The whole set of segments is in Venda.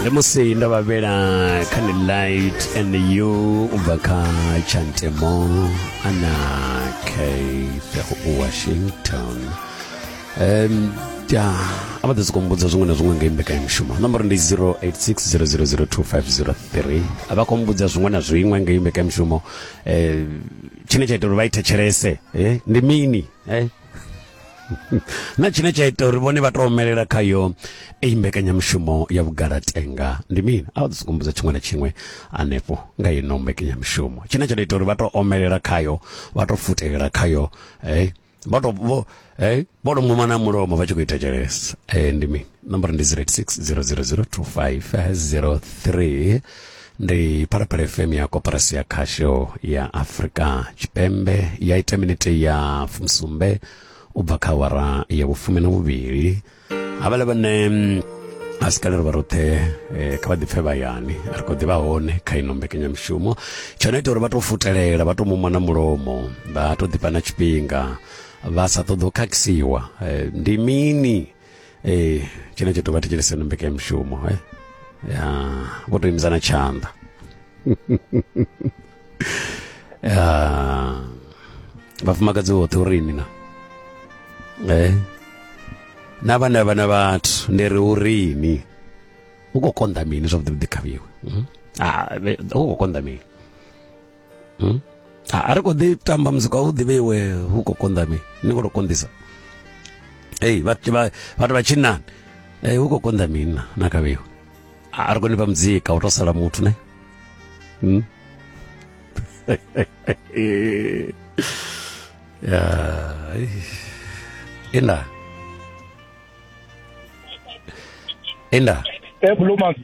ndi musi ndo vha vhela kha ni light and you u bva kha chantemo ana kfego u washington um ya a vha ḓo sokou mbudza zwiṅwe na zwiṅwe ngei mbekanyamushumo nomboro ndi 0860002503 a vha khou mbudza zwiṅwe na zwiṅwe ngei mbekanyamushumo um tshine tsha ita uri vha i thetshelese eh, ndi mini eh? na tshine tsha ita uri vhone vha to omelela khayo eyi mbekanyamushumo ya vhugalatenga ndi mini a vha ḓo sokumbudza tshiṅwe na tshiṅwe hanefho nga ino mbekanyamushumo tshine tsha to ita uri vha to omelela khayo vha to futelela khayo hey vha to vho hey vho to muma na mulomo vha tshi khou ita tshelesa eh ndi mini nomboro ndi 086 000 2503 ndi phalaphala fm ya koporasi ya khasho ya afurika tshipembe ya ita minete ya fumsumbe u bva kha awara ya vhufumi na vhuvhili havhala vhane mm, a si kalelo vha roṱhe eh, kha vha ḓipfe vhayani a ri khou ḓivha hone kha ino mbekanyamushumo tsho no ita uri vha tou futelela vha tou mumwa na mulomo vha tou ḓifha na tshifhinga vha sa ṱoḓi u khakhisiwa eh, ndi mini ee tshine tshithu vha thetshelese no mbekanyamushumo e ya vho to imisana tshanḓa ya vhafumakadzi vhoṱhe uri ini na e na vhane vha na vhathu ndi ri uri ini u khou konḓa mini zwavhuḓi vhuḓi khavhiwe hmm? ah, u khou konḓa mini hmm? a ri kho ḓi tamba muzika u ḓivhe iwe hu khou konḓa mi ni khou tou konḓisa ei vhathu vha tshinnani ei hu khou konḓa mini na na kavhiwa a ri koni fha muzika u tou sala muthu ne hmm? ya inda inda ebulumasi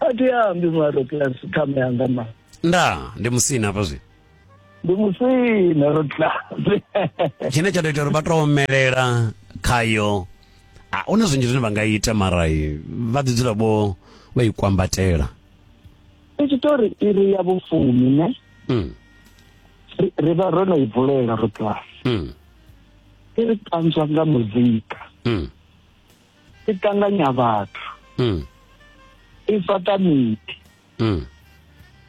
a thi ambi mara class ṱhama yanga ma nda ndi musina hafha zwi ndi musina ro class tshine tsha tou ita uri vha tou omelela khayo a huna zwinzhi zwine vha nga ita mara vha ḓi dzula vho vha i kwambatela i tshi tou ri iri ya vhufumi ne mm. ri vha ro no i vulela ro class mm. i ri ṱanzwa nga muzika mm. i ṱanganya vhathu mm. i fhaṱa miḓi mm.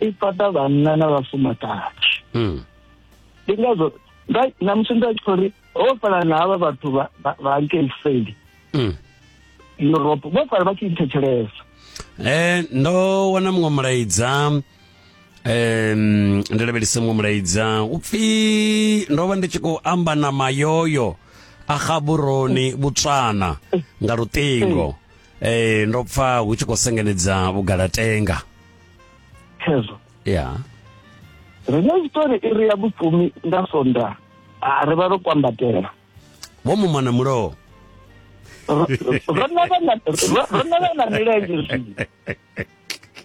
i fhaṱa vhanna na vhafumakadzi mm. ndi ngazwo na musi nda tshi khou ri ho fhala na havha vhathu vha nkelseli mm. europe vho fhala vha tshi thetshelesa um eh, ndo wana muṅwe mulaidza um ndi lavhelise muṅwe mulaidza u pfi ndo vha ndi tshi khou amba na mayoyo a gaburoni botswana nga luṱingo eh ndo pfa hu tshi khou sengenedza vhugalatenga khezwo ya ri na tshitori iri ya vhufumi nda sonda a ri vha ro kwambatela vho muma na mulowo Ro- ro na vha na- ro- ro na vha na milenzhe zwino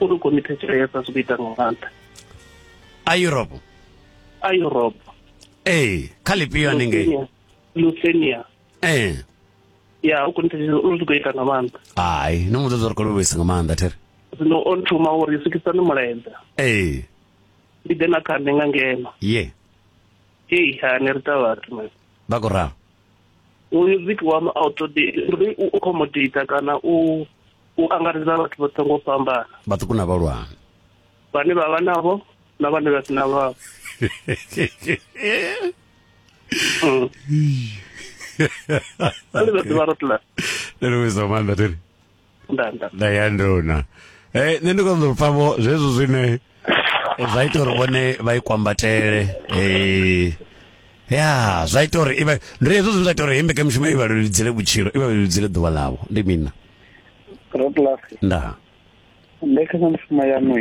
uri komite tshila ya fhasi ku ita nga maanḓa a europe a europe ee kha lifhio haningei lucenia ee ya u komite tshila uri ku ita nga maanḓa hai no mu ṱoḓa uri kolo vhuisa nga maanḓa there zwino o nthuma uri sikisani mulaedza ee ndi ḓe na kha nṋe nga ngeno ye hei ha ni ri ta vhathu vha ku ralo uyu viki wa uri u accommodate kana u u angaredza vhathu vhoṱhe ngo fhambana vhaṱuku na vhalwana vhane vha vha navho na vhane vha si na vhavho mm. Alibert Barotla. Lelo wezwa manda tele. nda ya nduna eh nṋe ndi konḓo pfa vho zwezwo zwine zwa ita uri vhone vha i kwambatele eh ya zwa ita uri ibe ndi hezwo zwine zwa ita uri hembe ka mishumo i vha leludzele vhutshilo i vha leludzele ḓuvha ḽavho ndi mina rotlasi nda mbekanyamushumo yaṋu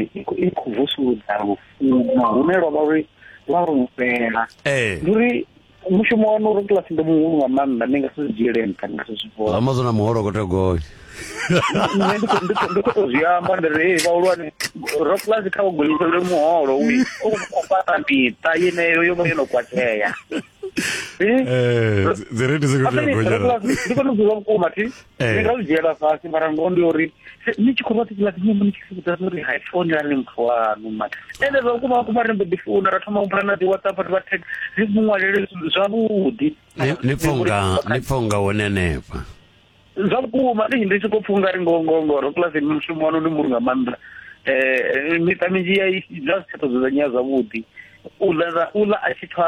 i khou vusuludza lufuno hune lwa vha uri lwa rumela eh. ndi uri mushumo wanu uri kiḽasi ndi muhulu nga maanḓa ndi nga si zwi dzhiele nṱha ndi nga si zwi vhona amazon na muholo khou tea gonya nṋe ndi khou- ndi khou- ndi khou tou zwi amba ndi ri "Hey, vhahulwane ro kiḽasi kha ugonyisele muholo wi u khou fhaṱa miṱa yeneyo yo vha yo no kwatea Eh? Eh, dzi- dzi rate dzi khou tea gonya na- ndi kone u ḓivha vhukuma thi Eh. ndi nga zwi dzhiela fhasi mara ngoho ndi uri ni tshi khou vha ṱikiḽa ḓiṅwe mbo ni tshi vhudza uri hai foni ani muthu waṋu mara ende zwa vhukuma vhukuma ri mbo ḓi founa ra thoma umbula na dzi whatsapp ri vha text ri mu ṅwalele zwavhuḓi ni pfha unga ni pfha unga hone henefha zwa vhukuma ndi ndi tshi khou pfha ungari ngoho ngoho ngoho ro kilasini mushumo wanu ndi muri nga maanḓa um miṱa minzhi ya zwa si tsha ṱoḓedzanyea zwavhuḓi u ḽa a tshi pfha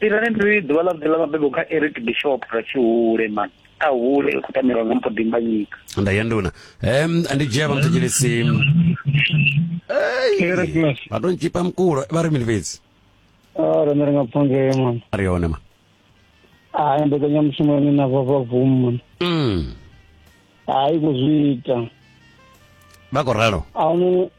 tirani ndi ḓuvha ḽa vhuḓi ḽa mabebo kha eric bishop ra tshihule man a hule u khou tamelwa nga mpho dimbanyika nda ya nduna um ndi dzhia vhamthetshelesi vha to ntshipa mukulo vha ri mini fhedzi ah, rine ri nga pfa ngee man a ri yone ma hayi ah, mbekanyamushumo yone na vhavavum man mm. hayi kuzwi ita vha khou ralo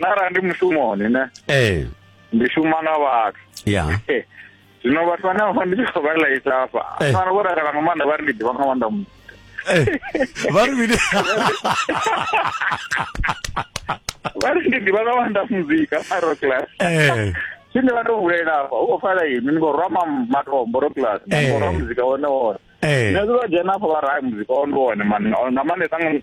na arali ndi mushumoni ne ee ndi shuma na vhathu ya zwino vhathu vhane vha ndi tshi khou vha laisa hafha Eh. fana vho takala nga maanḓa vha ri ndi ḓivha nga maanḓa mu- Eh, vha ri mini vha ri ndi ḓivha nga maanḓa muzika a rock class Eh, tshine vha tou vulela hafha u khou fala ini ni khou rwa ma- matombo rock class ni khou rwa Eh. muzika wone wone eh, nṋe vha dzhena hafha vha ra "Ai, muzika wone wone mani nga maanḓesa nga-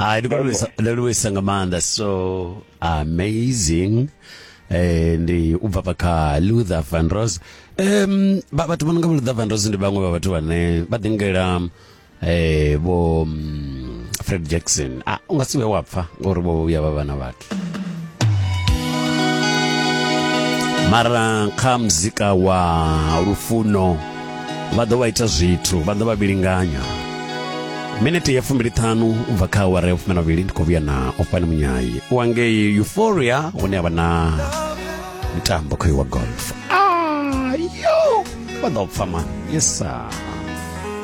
hai ndi khou livhuisa- ndi livhuisa nga maanḓa so amazing eh ndi u bva kha Luther Van Rose em ba- vhathu vha no nga vho Luther Van Rose ndi vhaṅwe vha vhathu vhane vha ḓingela eh vho mm, Fred Jackson ah unga si vhe wa pfa ngori vho vhuya vha vha na vhathu mara kha muzika wa lufuno vha ḓo vha ita zwithu vha ḓo vha vhilinganya minete ya fumbiliṱhanu u bva kha awara ya fumi na vhili ndi khou vhuya na ofani munyayi u angei euphoria hune a vha na mitambo khoyo wa golf ayo vha ḓo pfa mani yesa